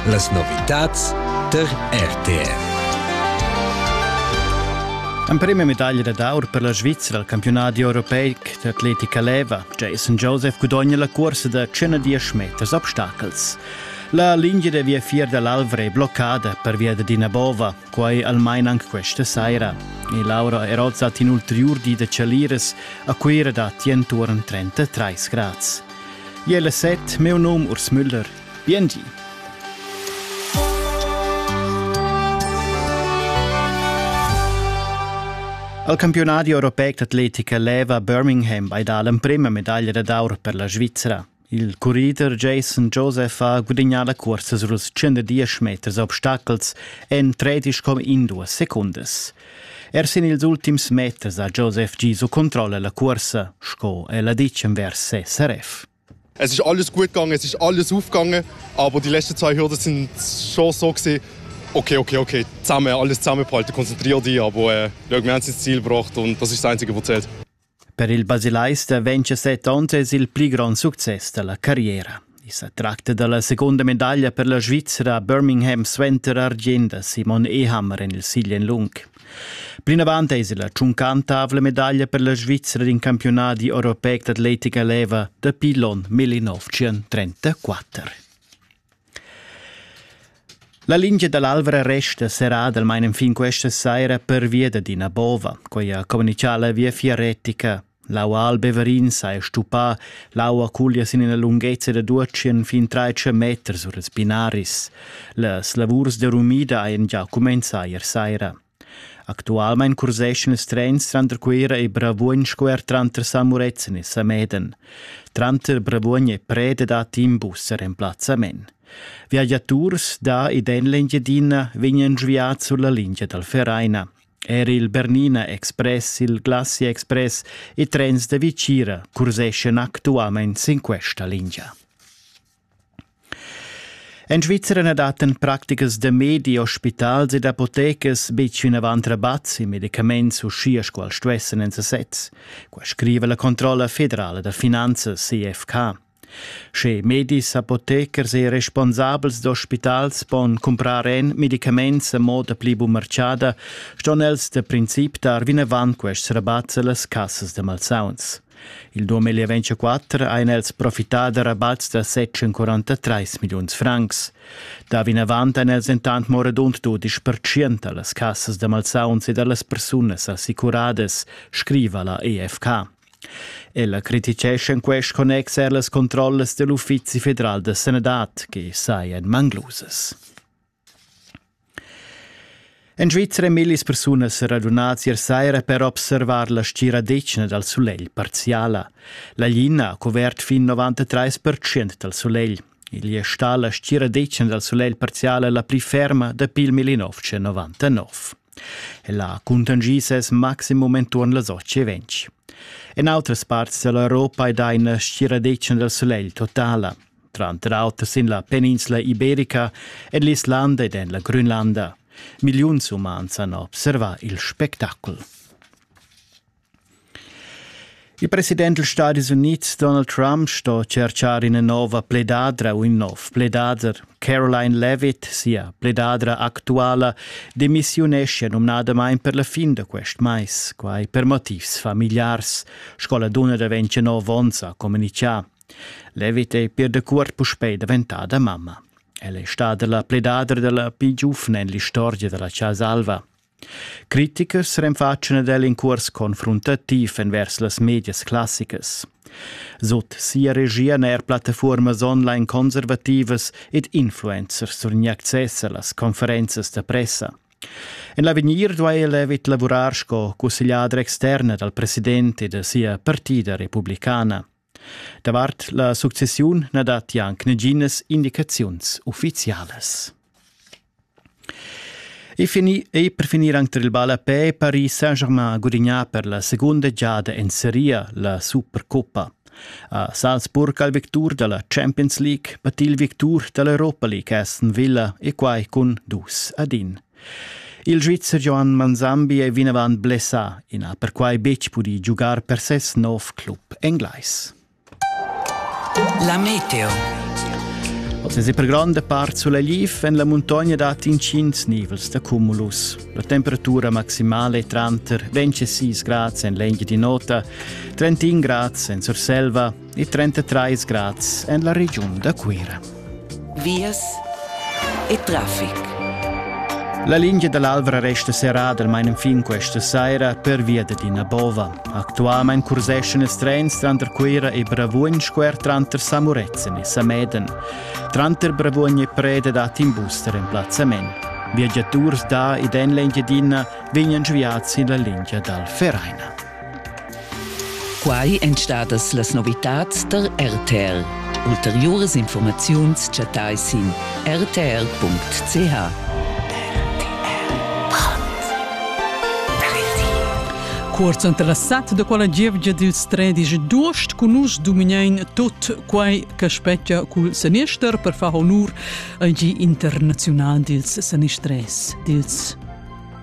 Las novitads tar RTR. L'emprima medaglia d'aur per la Svizra al campionat europeic d'atletica leva, Jason Joseph gudogna la cursa da 110 meters obstacels. La linea da viafier da l'Alvra è bloccada pervia da d'ina bova. Quai almain anc questa saira. E Laura Erozza hat inulterior di da Chalieres a Cuira da entuorn 33 grads. Jelle set, meu nom Urs Müller. Biengi. Al campionadi europeic d'atletica leva Birmingham ei dà l'emprema medaglia d'aur per la Svizzera. Il currider Jason Joseph ha gudagnà la cursa suls 110 meters obstacels en tredisch com in duas secundas. Er sin ils ultims meters ha Joseph Giso controlla la cursa, sco el ha ditg envers ses RF. Es ist alles gut gegangen, es ist alles aufgegangen, aber die letzten zwei Hürden sind schon so gewesen, okay, okay, okay, zusammen, alles zusammenbehalten, konzentriere dich, aber äh, schau, wir haben es ins Ziel gebracht und das ist das Einzige, was zählt. Per il basilaista vegn che set onns es il pli grond success da la carriera. I sa tracta da la segunda medaglia per la Svizra a Birmingham suenter argient da Simon Ehammer en il siglien lung. Plinavant es la tschuncantavla medaglia per la Svizra d'in campiunadi europeic d'atletica leva dapi l'on 1934. La lingia dall'Alvra resta serrada almain enfin questa saira pervia dad ina bova. Quei ha communicà la Viafier retica. L'aua al Beverin s'ha stuppà, l'aua cuglia sin ina lunghezza da 200 fin 300 meters sur ils binaris. Las lavurs de rumida hajan già cumenzà ier saira. Actualmein curseschan ils trens tranter Cuera e Bravuogn sco er tranter San Murezzan e Sameden. Tranter Bravuogn e Preda dat in bus er emplazzament. Viagiaturs da ed en l'Engiadina vegnan sviads sulla lingia dal Vereina. Er il Bernina Express, il Glacia Express e trens da Vicira curseschan actualmein sin questa lingia. En Svizzera na dattan practicas da medi, ospitals ed apotecas betg vinavant rabatt in medicaments uschia sco els stuessan en sesez. Qua scriva la controlla federala da finanzas CFK. Sche medis, apotechers e responsabels d'ospitals pon cumprar en medicaments a moda pli bumarciada, ston els da princip dar vinavant quests rabatt a las cassas da malsauns. Il 2024 ein els profità da rabats da 743 milliuns francs. Da vinavant ein els dentant mo radund dudisch percient dallas cassas da malsauns e dallas persunas assicuradas, scriva la EFK. Ella criticescha in quest connex er las controllas dell'Uffizi federal da sanadad che sajan manglusas. En Svizra ein millis persunas radunadas ier saira per observar la stgiradetgna dal sulegl parziala. La lina ha cuvert fin 93% dal sulegl. Igl è stà la stgiradetgna dal sulegl parziala la pli ferma dapi il 1999. Ella ha cuntanschì ses maximum enturn las 8.20. En autras parts dall'Europa è dà ina stgiradetgna dal sulegl totala. tranter auter sin la peninsla iberica, en l'Islanda ed en la Grönlanda. Milliuns umans han observà il spectacol. Il president degli Stati Uniti Donald Trump sto cercar ina nova pledadra u in nov pledader. Caroline Levitt, sia pledadra actuala, demissiunescia numnadamain per la fin da quest mais, quai per motivs familiars. Sco la dunna da 29 onns ha communichà. Levit ei pir dacuort puspei daventada mamma. Ella è stada la pledadra della pli giuvna en l'istorgia della Casa Alva. Criticers renfatschan ad el in curs confruntativ envers las medias classicas. Sut sia regia n'è er plattafuormas online conservativas ed influencers surgni access a las conferenzas da pressa. En l'avegnir duai Levit lavurar sco cussegliadra externa dal president e da sia partida republicana. Davart la successiun na datti anc naginas indicaziuns uffizialas. E, fini, e per finir anche il ballapè, Paris Saint-Germain gudignà per la seconda giada en Serie la Supercoppa. A Salzburg al victur dalla Champions League, battil victur dall'Europa League Aston Villa e quai cun dus ad in. Il Svizzer Johan Manzambi è vinavant blessà. I n'ha perquai betg pudì giugar per ses nov club englais. La meteo. Oz è per gronda part sulegl en la muntogna dat intgins nivels da cumulus. La temperatura maximale è tranter 26 grads en l'engia di nota, 31 grads en Surselva, e 33 grads en la regiun da Cuira. Vias e traffic. La lingia dall'Alvra resta serrada almain fin questa saira per via da Dina Bova. Actualmein curseschan ils trens tranter Cuira e Bravuogn squer tranter Samuretzen e Sameden. Tranter Bravuogn e Preda dat in bus da remplazzament. Viagiaturs da ed en l'Engiadina vegnan sviads sin la lingia dal Vereina. Quai èn stadas las novitads tar RTL. Ulteriuras informaziuns chattai sin rtl.ch. Cuorz interessat da quella gievgia dils tredici d'uost cun nus dumignein tot quei che spetga cul senister per far honur al gi internazional dils senistress dils